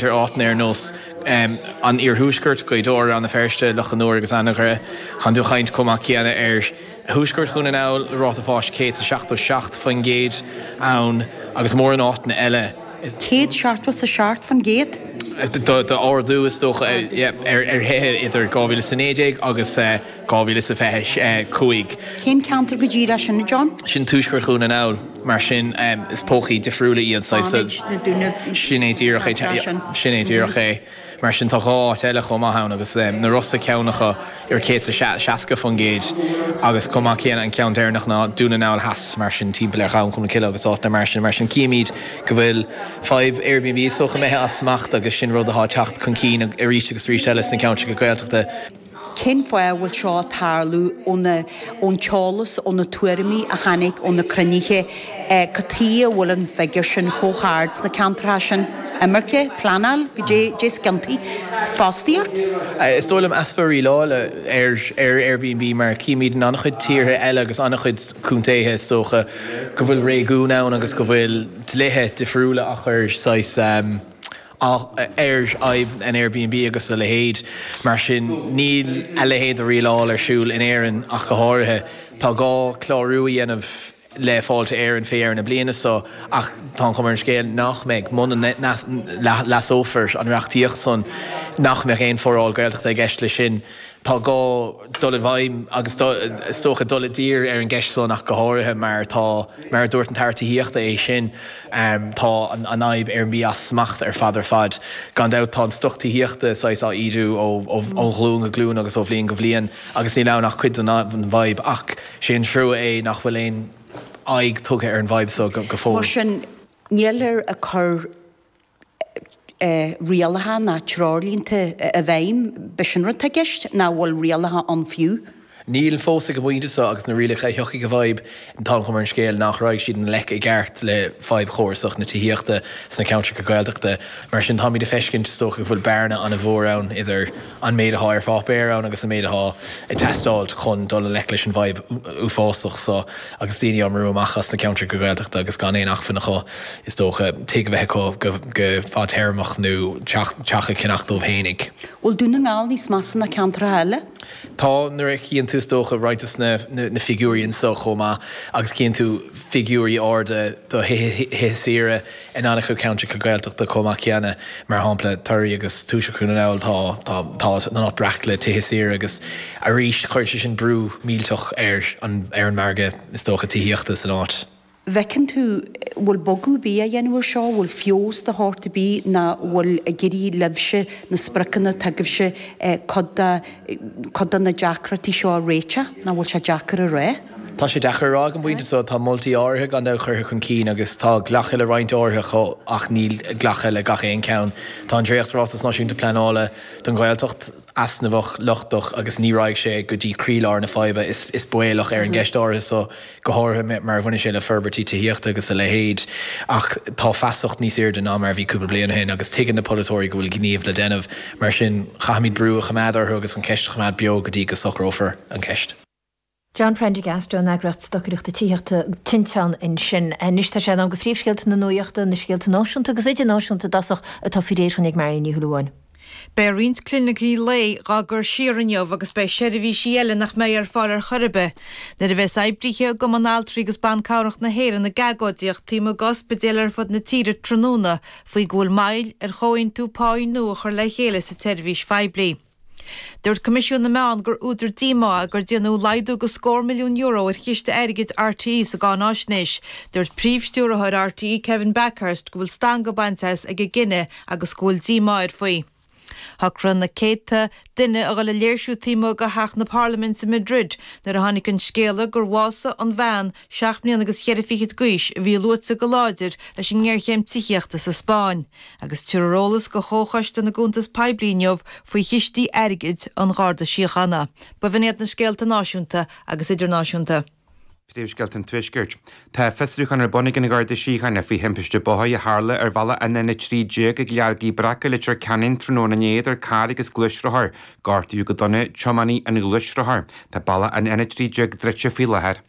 ar áiteanna ar nós an iarthuaiscirt, Gaoth Dobhair, Rann na Feirste, Loch an Iúir agus Anagaire. Gan dul ag caint chomh maith céanna ar thuaisceart Dhún na nGall, le ráta fáis 177% ann, agus mórán áiteanna eile. 177%? D'ardú, is dócha, ar thithe idir 2019 agus. 2025. Cén ceantar go díreach sin, a John? Sin tuaisceart Dhún na nGall, mar sin is pócaí difriúla iad. Sin é díreach é, sin é díreach é. Mar sin tá dhá áit eile chomh maith ann, agus na Rosa ceann acu, ar 160% agus chomh maith céanna an ceann deireanach ná Dún na nGall Theas, mar sin timpeall ar Ghleann Cholm Cille agus áiteanna mar sin. Mar sin chímid go bhfuil fadhb Airbnb is dócha imithe as smacht, agus sin rud atá ag teacht chun cinn arís agus arís eile sna ceantracha Gaeltachta. Cén fáth a bhfuil seo ag tarlú? Ón t-eolas, ó na tuairimí a tháinig ó na cruinnithe, cad chuige a bhfuil an figiúr sin chomh hard sna ceantracha sin. Imirce? Pleanáil? Cá dtéann deontais? Fostaíocht? Is dóigh liom easpa rialála ar Airbnb mar a chímid in an-chuid tíortha eile agus an-chuid contaetha. Is dócha go bhfuil réigiún ann agus go bhfuil dlíthe difriúla á gcur saghas. ar fhadhb an Airbnb agus a leithéid. Mar sin, níl a leithéid de rialáil ar siúl in Éirinn ach go háirithe. Tá gá clárú a dhéanamh le Fáilte Éireann fé dheireadh na bliana so, ach tá an chuma ar an scéal nach mbeidh, muna leasófar an reachtaíocht san, nach mbeidh aon foráil Gaeltachta i gceist leis sin. Tá gá dul i bhfeidhm agus is dócha dul i dtír ar an gceist san ach go háirithe mar tá, mar a dúirt an tAire Tithíochta é féin, tá an fhadhb Airbnb as smacht ar fad ar fad. Gan dabht tá an stoc tithíochta saghas á ídiú ó ghlúin go glúin agus ó bhliain go bliain agus níl ann ach cuid den bhfadhb ach sé an trua é nach bhfuil aon aghaidh tugtha ar an bhfadhb so go fóill. Mar sin, níltear ag cur. rialacha ná treoirlínte i bhfeidhm. Ab shin rud atá i gceist? Nó an bhfuil rialacha ann fiú? Níl fós ag an bpointe seo, agus na rialacha a thiocfaidh i bhfeidhm, tá an chuma ar an scéal nach raghaidh siad i ngleic i gceart le fadhb chórasach na tithíochta sna ceantracha Gaeltachta. Mar sin, táimid ag feiscint, is dócha, go bhfuil bearna an-mhór ann idir, an méid atá ar pháipéar ann agus an méid atá ag teastáilt chun dul i ngleic leis an bhfadhb uafásach so agus daoine á mbrú amach as na ceantracha Gaeltachta agus gan aon acmhainn acu is dócha, tigh a bheith acu go fadtéarmach nó teach a cheannacht dóibh fhéinig. Bhfuil Dún na nGall níos measa ná ceantracha eile? Tá, nuair a chíonn tú is dócha roinnt de na figiúirí anso chomh maith agus chíonn tú figiúirí arda do thithe saoire, In an-chuid ceantracha Gaeltachta chomh maith céanna, mar shampla Toraí agus Tuaisceart Dhún na nGall, tá tá an áit breac le tithe saoire agus arís chuireann sé sin brú millteach ar an ar an margadh is dócha tithíochta san áit. bhfeiceann tú bhfuil bogadh ar bith á dhéanamh air seo, bhfuil feabhas de shórt ar bith ná bhfuil ag éirí libhse na spriocanna atá agaibhse cuid de cuid de na deacrachtaí seo a réiteach, ná bhfuil sé deacair a rá? Tá sé deacair a rá ag an bpointe so, tá moltaí áirithe gan dabht curtha chun cinn agus tá glactha le roinnt áirithe acu ach níl glactha le gach aon cheann. Tá an dréacht-Ráiteas Náisiúnta Pleanála don Ghaeltacht easnamhach, lochtach agus ní raghaidh sé go dtí croílár na faidhbe, is baolach, ar an gceist áirithe so, go háirithe mar a bhaineann sé le forbairtí tithíochta agus a leithéid. Ach tá feasacht níos airde ná mar a bhí cúpla bliain ó shin agus tuigeann na polaiteoirí go bhfuil gníomh le déanamh, mar sin caithfimid brú a choimeád orthu agus an cheist a choimeád beo go dtí go socrófar an cheist. John Prendergast ón eagraíocht stocaireachta tithíochta Tinteán ansin. Anois tá sé in am do phríomhscéalta na nuaíochta, na scéalta náisiúnta agus idirnáisiúnta i dtosach, atá faoi réir dúinn ag Marion Ní Shúilleabháin. Beidh roinnt clinicí lae dhá gcur siar inniu agus beidh seirbhísí eile nach mbeidh ar fáil ar chor ar bith. Nuair a bheas oibrithe i gCumann Altraí agus Ban Cabhrach na hÉireann ag agóidíocht taobh amuigh d'ospidéil ar fud na tíre tráthnóna faoi go bhfuil moill ar chomhaontú páí nua a chur le chéile sa tseirbhís phoiblí, Dúirt Coimisiún na Meán gur údar díomá é gur déanadh laghdú de scór milliún euro ar chiste airgid RTÉ sa gcáináisnéis. Dúirt Príomh-Stiúrthóir RTÉ Kevin Bakhurst go bhfuil stangadh bainte as ag an gcinneadh agus go bhfuil díomá air faoi. Shocraigh na céadta duine a dhul ag léirsiú taobh amuigh de Theach na Parlaiminte i Madrid nuair a tháinig an scéala gur bhásaigh an bhean Seacht mbliana agus cheithre fichid d'aois a bhí luaite go láidir leis an ngéarchéim tithíochta sa Spáinn, agus tabharfar eolas do Chomhchoiste na gCuntas Poiblí inniu faoi chistí airgid an Gharda Síochána, b'in iad na scéalta náisiúnta agus idirnáisiúnta. Príomhscéalta an Tuaiscirt. Tá fiosrúchán ar bun ag an Gharda Síochána faoi thimpiste bóthair a tharla ar bhealach an N13 ag Leargaidh Bhreac i Leitir Ceanainn tráthnóna inné idir carr agus gluaisrothar. Gortaíodh go dona tiománaí an ghluaisrothair. Tá bealach an N13 druidte faoi láthair.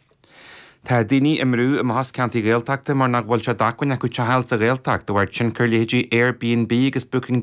Tá daoine á mbrú amach as ceantair Gaeltachta mar nach bhfuil sé d'acmhainn acu teach a fháil sa Ghaeltacht de bharr tionchar leithéidí Airbnb agus Booking.